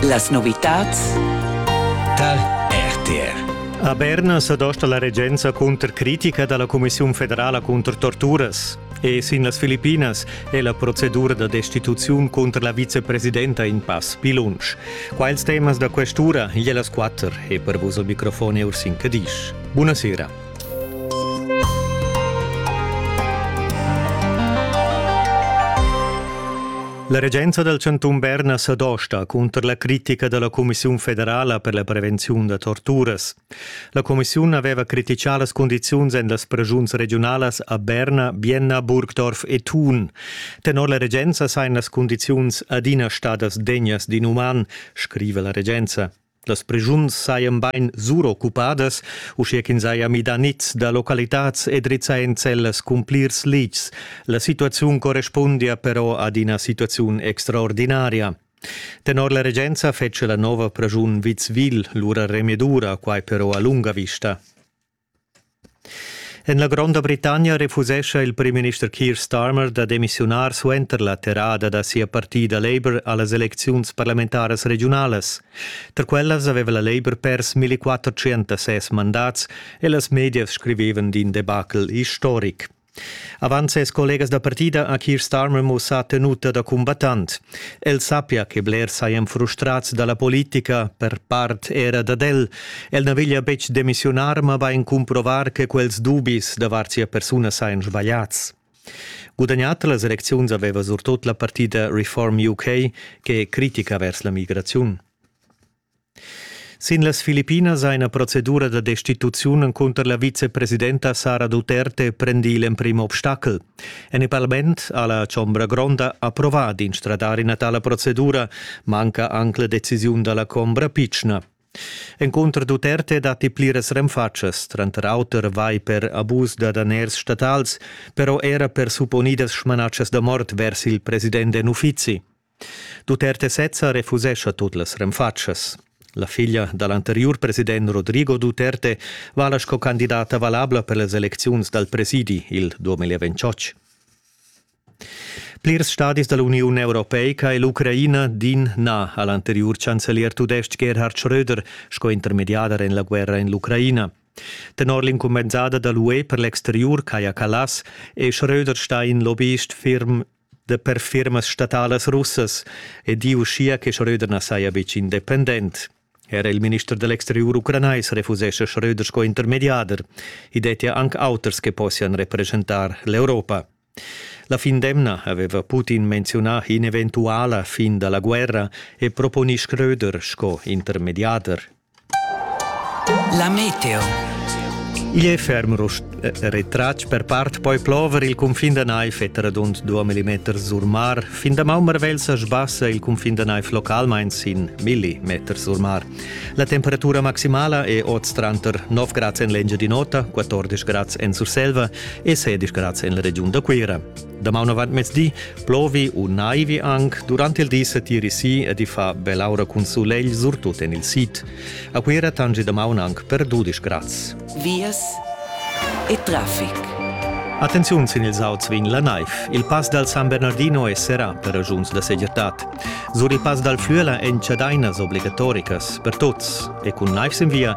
Las novitads tar RTR. A Berna s'adosta la regenza cunter critica da la Cumissiun federala cunter torturas. E sin las Filippinas è la procedura da destituziun cunter la vicepresidenta in pass pi lunsch. Quels temas da questura, e las quatter, e per vos al microfon Ursin Cadisch. Buonasera. La regenza dal chantun Berna sa dosta cunter la critica da la Cumissiun federala per la prevenziun da torturas. La cumissiun aveva criticà las condiziuns en las preschuns regiunalas a Berna, Bienna, Burgdorf e Thun. Tenor la regenza sajan las condiziuns adina stadas degnas d'inuman, scriva la regenza. Las preschuns sajan bain suroccupadas, uschia ch'ins haja midà niz da localitads e drizzà enzellas cun plirs litgs. La situaziun correspundia però ad ina situaziun extraordinaria. Tenor la regenza fetschia la nova praschun Witzwil lura remedura, quai però a lunga vista. En la Gronda Britannia refusescha il primminister Keir Starmer da demissiunar suenter la terrada da sia partida Labour a las elecziuns parlamentaras regiunalas. Tar quellas aveva la Labour pers 1406 mandats e las medias scrivevan d'in debacle istoric. Avant ses collegas da partida ha Keir Starmer mussà tenuta da cumbattant. El sappia che blers sajan frustrads da la politica, per part era dad el. El na veglia betg demissiunar, ma bain cumprovar che quels dubis davart sia persuna sajan sbagliads. Gudagnat las elecziuns aveva surtut la partida Reform UK, che è critica vers la migraziun. Sin las Filippinas ha ina procedura da destituziun encunter la vicepresidenta Sara Duterte prendì l'emprim obstacel. En il parlament ha la Chombra Gronda approvà d'instradar ina tala procedura, manca anc la decisiun da la Chombra pitschna. Encunter Duterte datti pliras renfatschas, tranter auter vai per abus da daners statals, però era per supponidas smanatschas da mort vers il president en uffizi. Tut erte sezza refusescha tut las renfatschas. La figlia dal anteriur president Rodrigo Duterte vala sco candidata valabla per las elecziuns dal presidi il 2028. Plirs stadis da l'Uniun Europeica e l'Ucraina din na a l'anteriur chancelier tudestg Gerhard Schröder sco intermediader en la guerra en l'Ucraina. Tenor l'incumbensada da l'UE per l'exteriur Kaja Kallas è Schröder stà in lobbyist ferm da per firmas statalas russas e di uschia che Schröder na saja betg independent. Era il minister da l'exteriur ucranais refusescha Schröder sco intermediader. I dettia anc auters che possian represchentar l'Europa. La fin d'emna aveva Putin menziunà in'eventuala fin da la guerra e proponì Schröder sco intermediader. La meteo. Igl è ferm rust retratg per part poi plover il cunfin da naif e radund 2 mm sur mar. Fin da Maummerwell sa sbassa il cunfin da naif localmain sin millimeters sur mar. La temperatura maximala è oz tranter 9 grads en l'Engiadin'Ota, 14 grads en Surselva e 16 grads en la regiun da Cuira. Damaun avant mezdi plovi u naivi anc durant il di setiri si e di fa bell'aura cun sulegl surtut en il sid. A Cuira tangi damaun anc per 12 grads. Vias e traffic. Attenziun sin ils auts vegn la naiv. Il pass dal San Bernardino è serrà per ragiuns da segirtad. Sur il pass dal Flüela èn chadainas obligatoricas per tuts e cun naivs in via